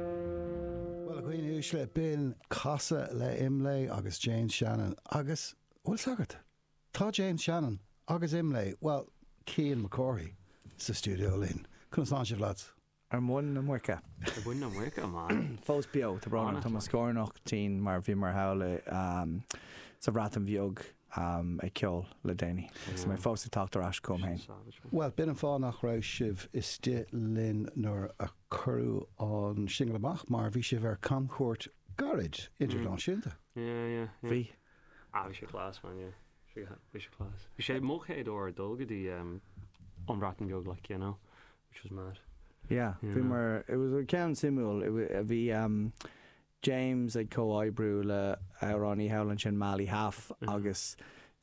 Bhuel, a dhaoine uaisle, b'in casadh le Imlé agus James Shannon. Agus, a bhfuil sagart? Tá James Shannon agus Imlé, bhuel, Cian Mac Cárthaigh, sa stiúideo linn. Conas tánn sibh, lads? Ar mhuin na muice. Ar mhuin na muice, man. Fós beo, tá brón orm, tá mo scornach tinn mar bhíomar thall sa Bhreatain Bheag ag ceol le déanaí agus mé fós ag teacht ar ais chugam féin. Bhuel, b'in an fáth nach raibh sibh istigh linn nuair a cuireadh an singil amach, mar bhí sibh ar camchuairt gairid, idirnáisiúnta. Bhí. Ah, bhí sé class, man, yeah. Bhí sé class. Bhí sé mo chéad uair ag dul go dtí an Bhreatain Bheag, like, you know, which was mad. Yeah, bhíomar, it was, ceann suimiúil, bhí, James ag comhoibriú le amhránaí thall ansin Mali Haf agus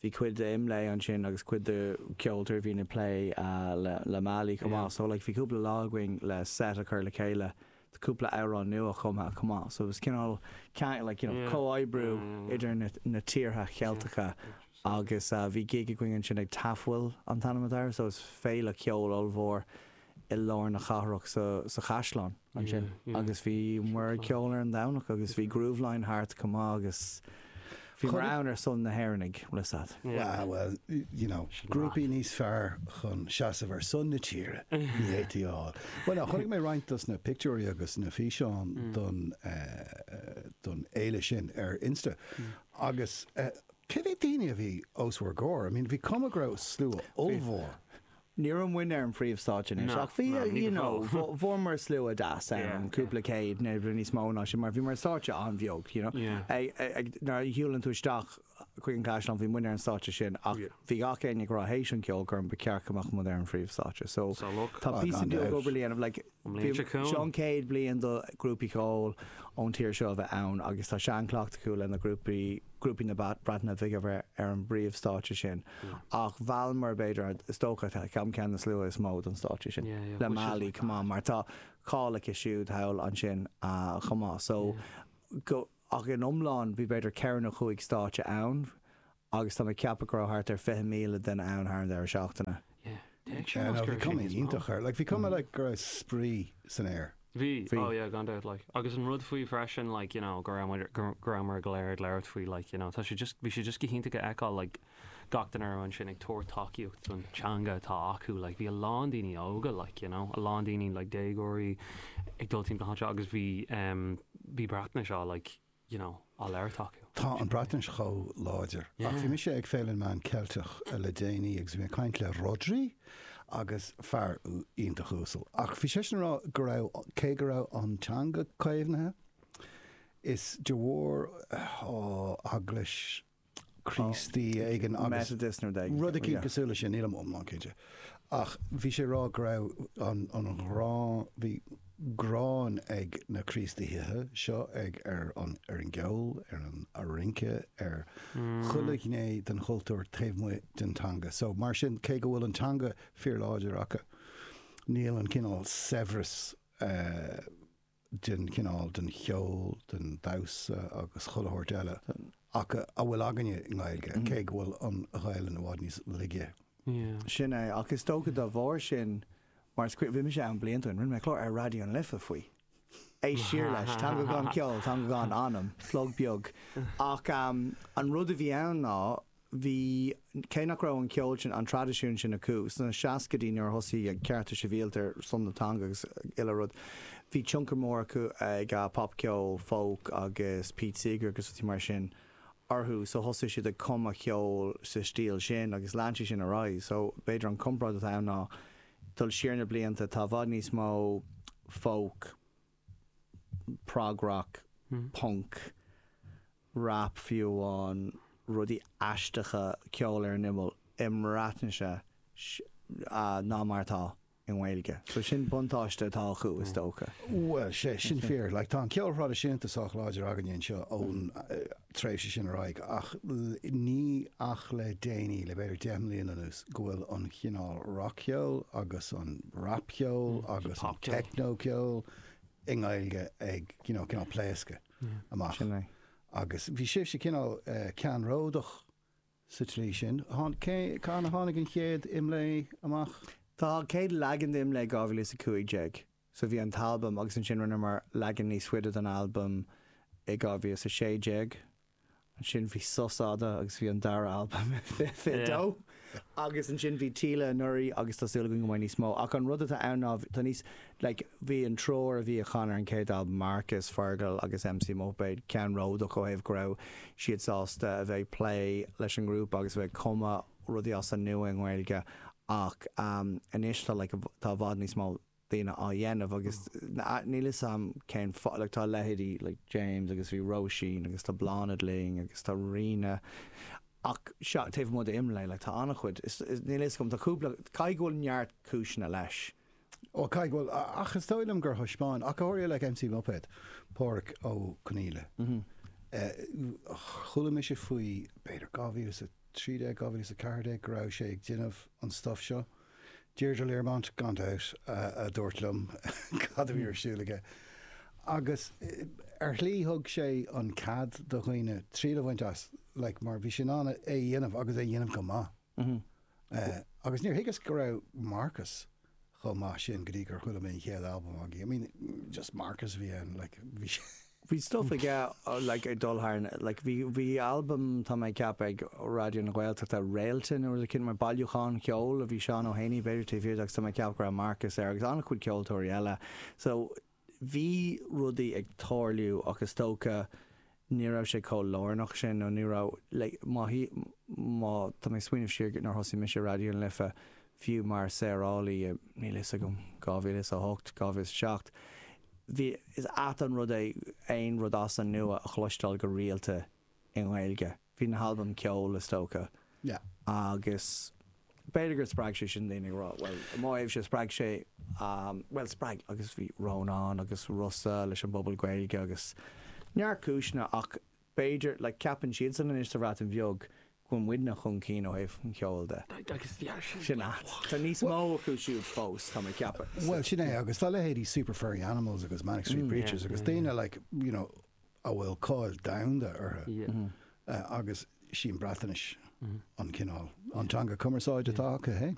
bhí cuid d'Imlé ansin agus cuid de ceoltóirí a bhíonn ag plé le Mali chomh maith so like bhí cúpla lá againn le set a chur le chéile do cúpla amhrán nuachumtha chomh maith so it was cineál ceann like you know comhoibriú idir na na tíortha Cheilteacha agus bhí gig againn ansin ag Tafwyl an t-ainm atá air so is féile ceoil ollmhór i lár na cathrach sa sa chaisleán. ansin agus bhí muid ag ceol ar an Domhnach agus bhí Grooveline thart chomh maith agus bhíomar ann ar son na hÉireannaigh, le sad. Wow, well, you know, grúpaí níos fearr chun seasamh ar son na tíre ní fhéadfaí a fháil. Bhuel, chonaic mé roinnt dos na pictiúirí agus na físeáin don, don fhéile sin ar Insta agus cé mhéad daoine a bhí os bhur gcomhair? I mean bhí cuma go raibh slua ollmhór. Ní raibh muid ar an phríomhstáitse anois, ach bhí, you know, fuaireamar slua deas ann, cúpla céad, nó níos mó ná sin, mar bhí muid ar stáitse an-bheag, you know. Nuair a shiúlann tú isteach chuig an gcaisleán, bhí muid ar an stáitse sin, ach bhí gach éinne ag rá théis an cheolchoirm ba cheart go mbeadh muid ar an phríomhstáitse. So tá píosa beag obair le déanamh, like. An bhliain seo Seo an chugainn. chéad bhliain do ghrúpaí ceoil ón tír seo a bheith ann agus tá seanchleachtadh acu le na grúpaí, grúpaí na Breataine Bhige a bheith ar an bpríomhstáitse sin ach mheallamar b'fhéidir, is dócha, ceann ceann de na sluaite is mó don stáitse sin Yeah, yeah, le which is Mali, like come on, mad. mar tá cáil aici siúd thall ansin chomh maith so Yeah. go, ach in iomlán bhí b'fhéidir ceithre nó cúig stáitse ann agus tá mé ag ceapadh go raibh thart ar 20,000 duine ann thar an deireadh seachtaine. Yeah, d'fhéach sé Yeah, mar no, bhí scéal cuma níos mó. iontach air. Like, bhí cuma like go raibh spraoi san aer. Bhí, Bhí. oh yeah, gan dabht, like. Agus an rud faoi freisin, like, you know, go raibh muid, go, go raibh muid go léir ag labhairt faoi, like, you know, tá sé just, bhí sé just go hiontach a fheiceáil, like, gach duine a raibh ansin ag tabhairt tacaíocht don teanga atá acu, like, bhí a lán daoine óga, like, you know, a lán daoine, like, déagóirí ag dul timpeall na háite agus bhí, em, bhí Breatnais á, like, you know, á labhairt acu. Tá an Bhreatnais chomh láidir. Ach bhí mise ag Féile na Meán Ceilteach le déanaí agus bhí mé ag caint le Rhodri agus fear iontach uasal ach bhí seisean ag rá go raibh, cé go raibh an teanga caomhnaithe, is de bharr, oh, Eaglais na. Críostaí éigin agus rud éigin cosúil leis sin, nílim iomlán cinnte. Ach bhí sé ag rá go raibh an ghráin, bhí gráin ag na Críostaithe seo ar an gceol, ar an rince, ar chuile ghné den chultúr taobh amuigh den teanga. So, mar sin, cé go bhfuil an teanga fíorláidir acu, níl an cineál saibhreas den chineál, den cheol, den damhsa agus chuile shórt eile ach a bhfuil againne i nGaeilge, cé go bhfuil an Ghaelainn i bhfad níos laige. Sin é, ach is dócha de bharr sin, mar is cuimhin, bhí mise ann blianta ó shin, rinne mé clár ar Raidió na Life faoi. Éist siar leis, Teanga Gan Cheol, Teanga Gan Anam, plug beag. Ach an rud a bhí ann ná. bhí, cé nach raibh an ceol sin, an traidisiún sin acu sna seascaidí nuair a thosaigh cearta sibhialta ar son na teanga agus uile rud, bhí tionchar mór acu ag popcheol, folk agus Pete Seeger agus rudaí mar sin orthu so thosaigh siad ag cumadh ceol sa stíl sin agus lean sé sin ar aghaidh so b'fhéidir an comparáid atá ann ná dul siar na blianta tá i bhfad níos mó folk, prog rock, punk. rap fiú amháin, rudaí aisteacha, ceol ar an imeall i mBreatnaise ná mar atá i nGaeilge. So sin buntáiste atá acu is dócha. Bhuel, sea, sin fíor. Like, tá an ceol thraidisiúnta sách láidir againne anseo ón tréimhse sin ar aghaidh, ach ní ach le déanaí, le b'fhéidir deich mbliana anuas, go bhfuil an chineál rac-cheol agus an rap-cheol agus an techno-ceol i nGaeilge ag, you know, cineál pléascadh. amach. Agus bhí sibhse cineál ceannródach sa tslí sin. Cathain a tháinig an chéad Imlé amach? Tá an chéad leagan de Imlé i 2015. So bhí an t-albam agus ansin rinneamar leagan níos faide den albam i 2016. Ansin bhí sos fhada agus bhí an dara albam fiche dó. Agus ansin bhí Taoille anuraidh agus tá súil againn go mbeidh níos mó. Ach an rud atá ann ná tá níos, like, bhí an triúr a bhí a chan ar an chéad albam, Marcus, Fergal agus MC Muipéad, ceannródach ó thaobh go raibh siad sásta a bheith ag plé leis an ngrúpa agus a bheith ag cumadh rudaí as an nua i nGaeilge ach anois tá, like, tá i bhfad níos mó. daoine á dhéanamh agus níl 'fhios a'm cén fáth, like tá leithéidí like James agus bhí Róisín agus tá Bláthnaid linn agus tá Ríona ach seachas, taobh amuigh d'IMLÉ like tá an-chuid, is níl 'fhios a'm, tá cúpla, caithfidh go bhfuil neart cúiseanna leis. Ó caithfidh go bhfuil, ach is dóigh liom gur thaispeáin, ach go háirithe, like, MC Muipéad, Páraic Ó Conaíle, chuala mise faoi b'fhéidir 2013, 2014 go raibh sé ag déanamh an stuff seo. Deirdre Learmont, gan dabht, a dúirt liom cad a bhí ar siúl aige. Agus ar shlí thug sé an cead do dhaoine triail a bhaint as, like, mar bhí sé in ann é a dhéanamh agus é a dhéanamh go maith. Agus níor thuigeas go raibh Marcus chomh maith sin go dtí gur chuala mé an chéad albam agaibh. I mean, just Marcus a bhí ann, like, bhí sé. Bhí stuff aige like ag dul thar na like bhí bhí albam tá mé ag ceapadh ag Raidió na Gaeltachta Réalta nó rud eicínt mar bailiúchán ceoil a bhí Seán Ó hÉanaí b'fhéidir taobh thiar de agus tá mé ag ceapadh go raibh Marcus air agus an-chuid ceoltóirí eile so bhí rudaí ag tarlú ach is dócha ní raibh sé chomh lárnach sin nó ní raibh like má shí má tá mé ag smaoineamh siar go nár thosaigh mise Raidió na Life fiú mar saorálaí i níl a fhios agam 2008 2007 Bhí, is ait an rud é aon rud as an nua a chloisteáil go rialta i nGaeilge. Bhí na halbaim Ceol, is dócha. Agus b'fhéidir gur spreag sé sin daoine ag rá, bhuel, i mo thaobhse, spreag sé, bhuel, spreag, agus bhí Rónán agus Rossa leis an bpobal Gaeilge agus neart cúiseanna ach b'fhéidir, like ceapann siadsan anois sa Bhreatain Bheag go bhfuil muidne chun cinn ó thaobh an cheoil de. Sin a, tá níos mó acu siúd fós, tá mé ag ceapadh. Bhuel, sin é, agus tá leithéidí Super Furry Animals agus Manic Street Preachers agus daoine like, you know, a bhfuil cáil domhanda orthu agus sí an Bhreatainis an cineál, an teanga cumarsáide atá acu fhéin.